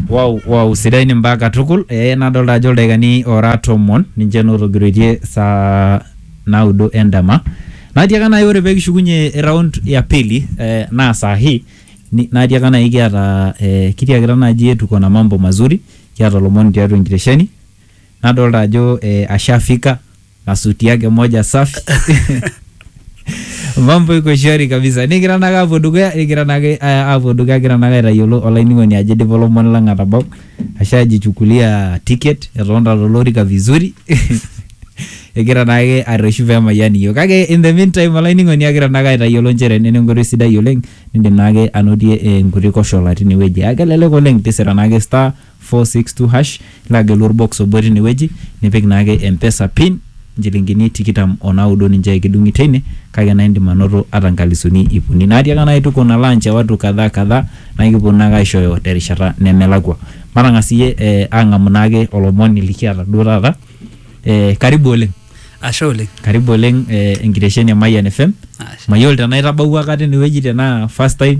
Wow, wow, sidai ni mbaa katukul ee nadolta ajo ildaikani ora tomon ninche naa otogiroitie saa naudo endama natiaka nai ore pekishukunye round ya pili eh, naa saa hii ni- natiaka nai kiata eh, kitiakita naji tuko na mambo mazuri kiata olomoni tiatua enkitesheni nadolta ajo eh, ashafika na suti yake moja safi mambo iko shwari kabisa nigira nake apuo dukuya nigira nake eh, apuo dukuya agira nake aitayiolo olainining'oni ajo idipa olomoni lang atabau ashu ajichukulia ticket etonta tolorika vizuri egira naake arreshu pemayian iyiok kake in the meantime olainining'oni agira naake aitayiolo nchere nena enkoitoi sidai oleng nindim naake anotie eh, nkuti koshola tinewueji akelelek oleng tisira naake star 462#, nilo agelu olbox obo teine wueji, nipik naake Mpesa pin, inchilingini tikitam o naudo ninche kidung'i teine, kake naa indim anoto ata inkalisuni iip uni. Naa tiakaka naake tuko na launch e watu kadhaa kadhaa naa kipwonu naake aishooyo terishata nemelakwa. Matang'as siyie ang'amu naake olomoni likiata duo taata. Karibu oleng. Ashe oleng. Karibu oleng enkitesheni e Mayian FM. Ashe. Mayiolo tenaa itabawua aikata ene wueji tenaa first time.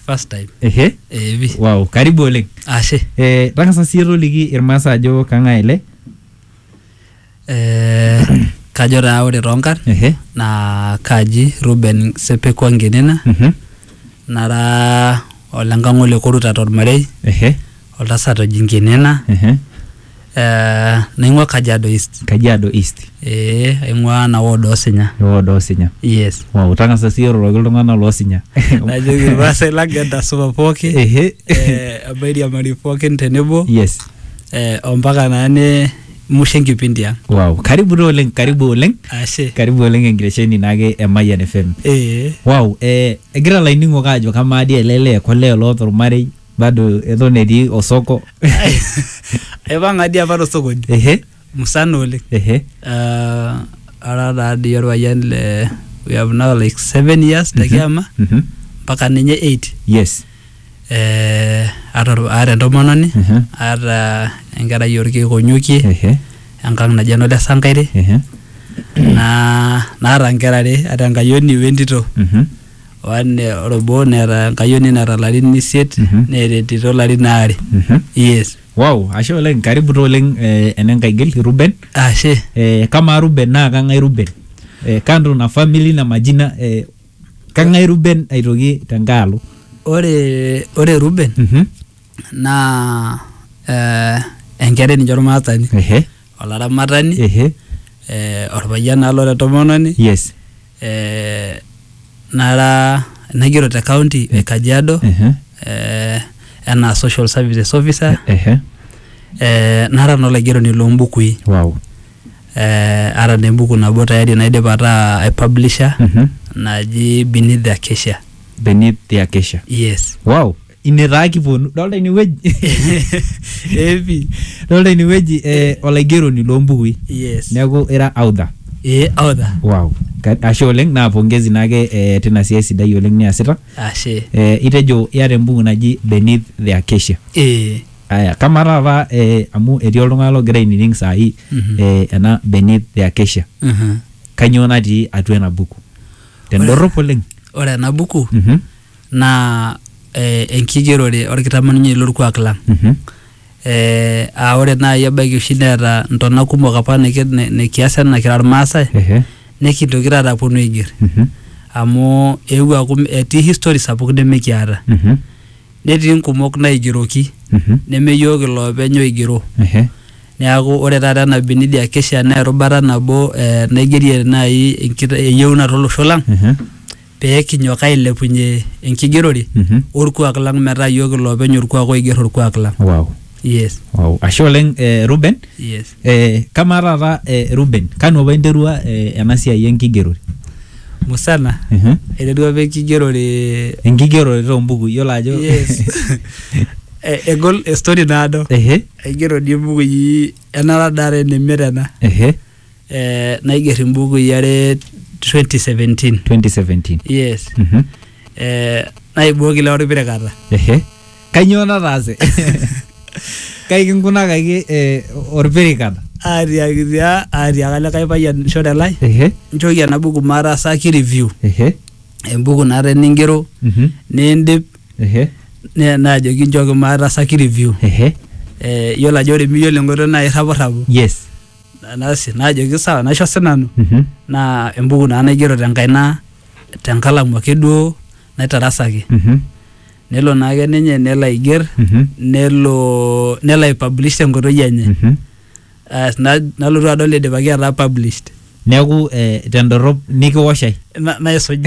first time ehe eh, pi wow karibu oleng ashe eh, tang'asa siyie toliki irmaasa ajo kang'ae ele eh, kajo taa ore toonkarn ehe naa kaji Ruben Sepekwa Ngenena mhm, nara olenkang'ole Koruta tormarei ehe oltasat oji Nkinena Ehe. eh, naing'ua Kajiado East Kajiado East. eh, aing'ua ena ward Osinya Ewod Osinya. yes Wow, tang'asa sii iroroki iltung'anak loosinya. najoki irmaasai lang entasupa pooki Ehe. eh, mairiamari pookin tenebo Yes. eh, ompaka naa ne musho enkipindi ang Wow, karibu taa oleng, karibu oleng. ashe Karibu oleng enkiresheni naake e Mayian FM. eh, Wow, eh, egira laining'ok aajo kamaa dii ele lee kolee loota ormarei Bado eton etii osoko. Aipang'a dii apa tosokoni Ehe, musana oleng. ehe. Ah, ara taa dii orpayian le we have now like seven years te kiama Mhm. mpaka ninye eight. Yes. Eh, aata or- aata entomononi Mhm. aata enkerai orkeek onyokie Ehe, enkang naji eno le Sankaire ehe. naa naata inkera are aata enkayioni wentito. Mhm. one ore obo neeta enkayioni naata larin isiet Mhm. neeta entito larin aare Mhm. yes wow ashe oleng karibu taa oleng eh, enenkaigil ruben ashe eh, kamaa ruben naa kang'ae ruben eh, kando na family na majina eh, kang'ae ruben aitoki tenkae alo ore ore Ruben Mhm. naa eh, enkerai ninye ormaasani Ehe. olaramatani ehe eh, orpayian naa lora entomononi yes eh, nara naigero te county e Kajiado ehe eh, enaa social services officer ehe eh, nara naa olaigeroni loombukui wow eh, ara naa embuku nabo tayari naidipa ataa aipublisha Mhm. naji Beneath the Acacia beneath the acacia yes wow ine taa kiponu dolta inewueji epi dolta inewueji eh, olaigeroni loombukui yes neeku ira audha ee audha wow Ka- ashe oleng naa pongezi naake eh, tina siai sidai oleng niasita ashe eh, itejo iyata embuku naji beneath the acacia ee aya kama taata eh, amu etii oltung'ani logira ainining saai Mhm. eh, ena beneath the acacia mhm. kanyoo natii atua ena buku tendorrop oleng ore ena buku Mhm. naa eh, enkigerore orkitamanyunyei lorkuak lang Mhm. eh, aa ore naaji ebaiki oshi neeta ntona kumok apa niki- ni- nikias ena kira irmaasai Ehe. nikintoki taata aponu aiger Mhm. amu eewuo aaku m- etii history sapuk nimikiata Mhm. netii nkumok naigeroki Mhm. neme yiok iloopeny oigero Ehe. neeku ore taata ena binidi akesha naa erubata nabo eh, naigerie naaji enkita- eyieunoto olosho lang Ehe. pee kinyok ailepunye enkigerore Mhm. olkuak lang metaa iyiook iloopeny olkuak oiger olkuak lang. wow. Yes, wow. ashe oleng eh, ruben yes. eh, kamaa taata eh, ruben kanu apa interua eh, ena siai enkigerore Musana, Mhm. aiterua apa enkigerore enkigerore toombuku iyiolo ajo yes. E- egol story naado. Ehe, Aigero dii mbukui enara dare neme tena. ehe. eh, naiger imbukui are 2017 2017 yes Mhm. eh, naibooki lewa orpirekata ehe kainyoo nataase kai kinkunakaki eh, orpirikata atiakitia atiaka likae payian shore lai ehe nchooki ena buku maataasaki review ehe embuku naata eningero Mhm. niindip ehe ne- naajoki nchooki maataasaki review ehe eh, yiolo ajo ore miyiolo enkoitoi naa irrapurrapu yes nasi najoki sawa naisho sinanu Mhm. naa embuku naa naigero tenkaina tenkalamu ake duo naitarasaki Mhm. nelo naake ninye nelo aiger Mhm. nelo nelo aipublish tenkoitoi enye Mhm. As, na- nalotu adol idipaki ataa published neeku eh, tendorop nikiwosh ai Na- naisuj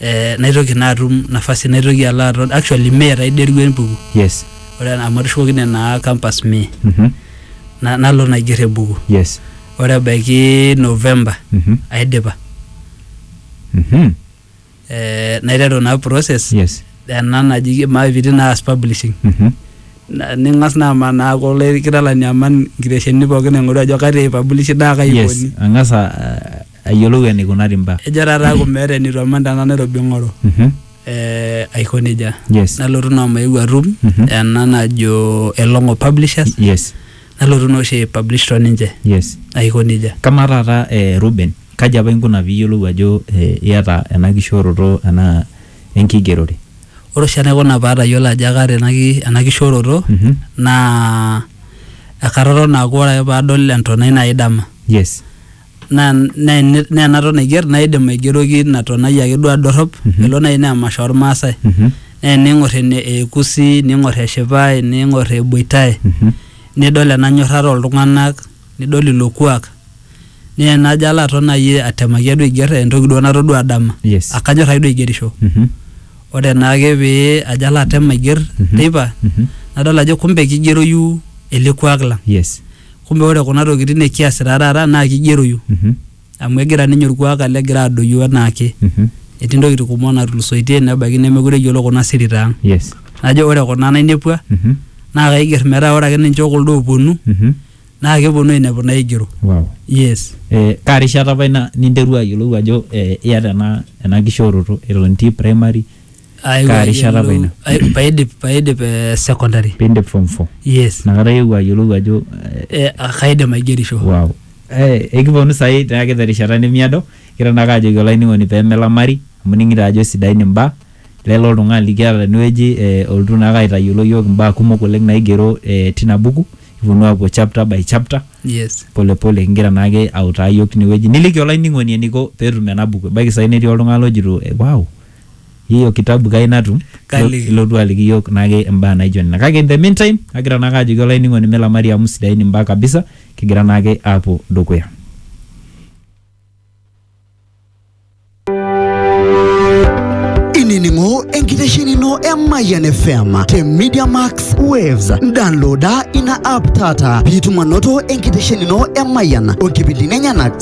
eh, naitoki naa atum nafasi naitoki alo aton actually mee taa iderua embuku yes ore ena- amu atushukokine naa campus mee Mhm. na, nalo naiger embuku yes ore ebaiki november Mhm. aidipa Mhm. eh, naiteru naa process yes ena naji maipiti naas publishing Mhm. Na- ning'as naa amanaa kulo kitalani aman nkitesheni pookin aing'oru ajo katii ipublishi naa kai yes ikoni ang'as a- ayiolou eneikunari mbaa. Ejo taata aaku meeta eneitu aman tena Nairobi ing'oru. Eeh aiko nejia. Nalotu naa omaeu atum ena najo Elong'o Publishers nalotu naa oshi ai publish to ninche. Aiko nejia. Kamaa taata eh Reuben, kaji apa inkuna pee iyiolou ajo iyata ena kishooroto enaa enkigerore? Ore oshi enaikuna pee atayiolo ajo kaata ena kishooroto naa ekatotona aaku ore ake pee adol entonai naai dama naa naa ene- naa enaton aiger naa idim aigeroki ina tonai ake duo adorrop Mhm. elo naaji naa emasho ormaasai Mhm. naa ening'or ene ekusi ning'or eshipai ning'or eboitae Mhm. nidol ena nyorrata oltung'anak nidol ilo kuak naa enajo alo aton naaji atemaki ake duo aiger entoki duo natodua dama Yes. akanyorr ake duo aigerisho Mhm. ore naake pee ajo alo atem aiger Mhm. teipa Mhm. nadol ajo kumbe kigeroyu ele kuak lang Yes. kumbe ore kuna tokitin nikiasita taata naa kigeroyu Mhm. amu egira ninye orkuak alo egira adoyio enaake Mhm. etii ntokitin kumok natulusoitie nebaiki nemekure eyiolo kuna sirita ang Yes. najo ore kuna nainepua Mhm. naa kaiger metaa ore ake ninche okuldo ooponu Mhm. naa keponu ainepu naigero Wow. yes Eh, kaa rishata apa ina ninterua ayiolou ajo eh, iyata ena ena kishooroto eton itii primary Aewuo Kaa rishata apa ayiolou- ina? ai- paidip paidip eh, secondary piindip form four yes inakata iewuo ayiolou ajo eh, Eh, ah, kaidim aigerisho wow Eh, ekiponu saai naake terishata nemiado kira naake ajoki olainining'oni pemelamari amu ining'ito ajo sidain imbaa lelo oltung'ani likiata tenewueji eh, olotu naake aitayiolo yiok imbaa kumok oleng naigero eh, tina buku kiponu apuo chapter by chapter yes polepole kingira naake autaa yiok tinewueji niliki olainining'oni eniko peetum ena buku ebaiki sai netii oltung'ani lojito eh, wow hiyo kitabu kai natum Kaliki. ilotu aliki yiok naake imbaa naijo nena kake in the meantime agira naake ajoki olainining'oni milamari amu sidain imbaa kabisa kigira naake aapuo dukuya inining'o enkitesheni ino e Mayian FM te Media Max Waves. Downloada ina app taata piitum anoto enkitesheni ino e Mayian o nkipindini enyenak